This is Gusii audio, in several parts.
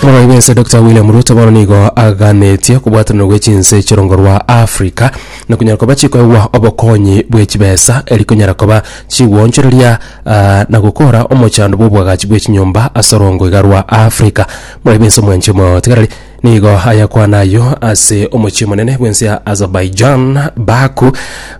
Omorwai bw'ense Dr William Ruto bono nigo aganetie okobwatanana gwe chinse chi'orongo rwa Africa na konyara koba chikoegwa obokonyi bwe chibesa eri konyara koba chigwonchoreria ah, na gokora omochando bw'obwagachi bwe chinyomba ase orongo iga rwa Africa. Omorwai bw'ense omwanchete omotigarari Nigo ayakwana ayio ase omochie omonene bw'ense ya Azerbaijan, Baku,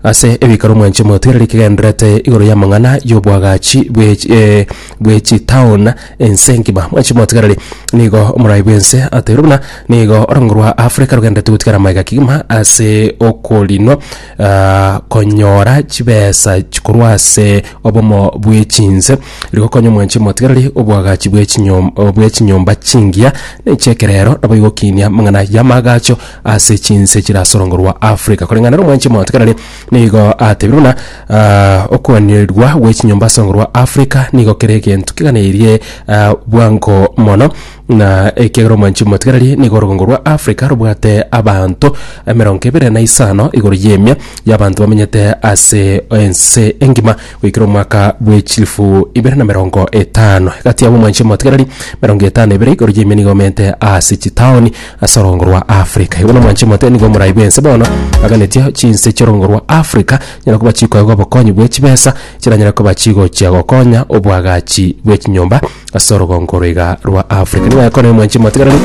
ase ebiikaro mwanche motweereri kegendererete igoro y'amang'ana y'obwagachi bwe eh, bwe chitown ense ngima. Mwanche motweereri nigo omorai bw'ense ateirwe buna nigo orongo rwa Africa rogenderete gotigara maega kegima ase okorinwa ah, konyora chibesa chikorwa ase obomo bw'echinse Rigokonya omwanchi omotigarari oboagachi bwe chinyom- o, bwe chinyomba chingiya na echi'ekerero, nabo igokinia amang'ana y'amaagacho ase chinse chirasorongo rwa Afrika. Koreng'ana nomwanchi omotigarari nigo atebire buna, ah, okoanirirwa gwe chinyomba asorongo rwa Afrika nigo kere egento keganeirie ah, bwango mono, Na ekiagera omwanchi omotigareri nigo orogongo rwa Afrika robwate abanto emerongo ebere na isano igoro y'emia y'abanto bamenyete ase ense engima goikera omwaka bw'echilifu ibere na merongo etano. Egati yabo omwanchi omotigareri merongo etano ebere igoro y'emia nigo bamenyete ase chitaoni ase orogongo rwa Afrika. Igo na omwanchi omotigareri nigo omorai bw'ense bono aganetie chinse chi'orogongo rwa Afrika nyara koba chikoegwa obokonyi bwe chibesa chiranyare koba chigochia gokonya obwagachi bwe chinyomba ase orogongo roiga rwa Africa. Nigo yakona omwanchi motigarani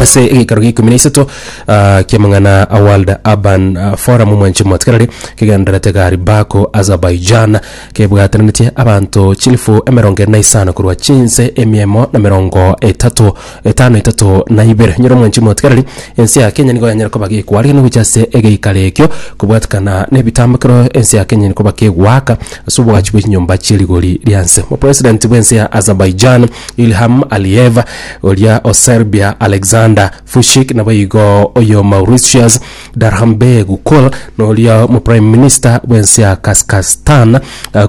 ase egeikaro gia ikomi na isato ah, kiamang'ana a World Urban ah, Forum omwanchi motigarari kegendererete gari Baku Azerbaijan kebwatananetie abanto chilifu emerongo ere na isano korwa chinse emiemo na merongo etato etano etato na ibere. Nyoro mwanchire motigareri, ense ya Kenya nigo yanyare koba gekoa rigeeno gochia ase egeikaro ekio, kobwatekana nebitambo ekero ense ya Kenya eri koba kegoaka ase obwachi bwe chinyomba chie rigori ria nse. Omopresident bw'ense ya Azerbaijan Ilham Aliyev, oria o Serbia Alexander Vucic, nabo igo oyo Mauritius Darhanbeg Kul, na oria omoprime minister bw'ense ya Kaskastan,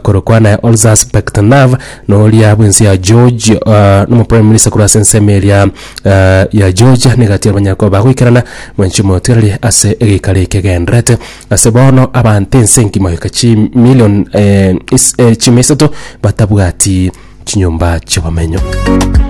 korokwana Olzas Bektenov, Noria bw'ense ya George ah, nomo prime minister korwa ase ensemo eria ah, ya Georgia nigo atiire abanyakoba bagoikerana mwenche motiareri ase egeikaro ekegenderete ase bono abanto ense engima goika chimilion eh, is- eh, chimia isato batabwati chinyomba chi'obomenyo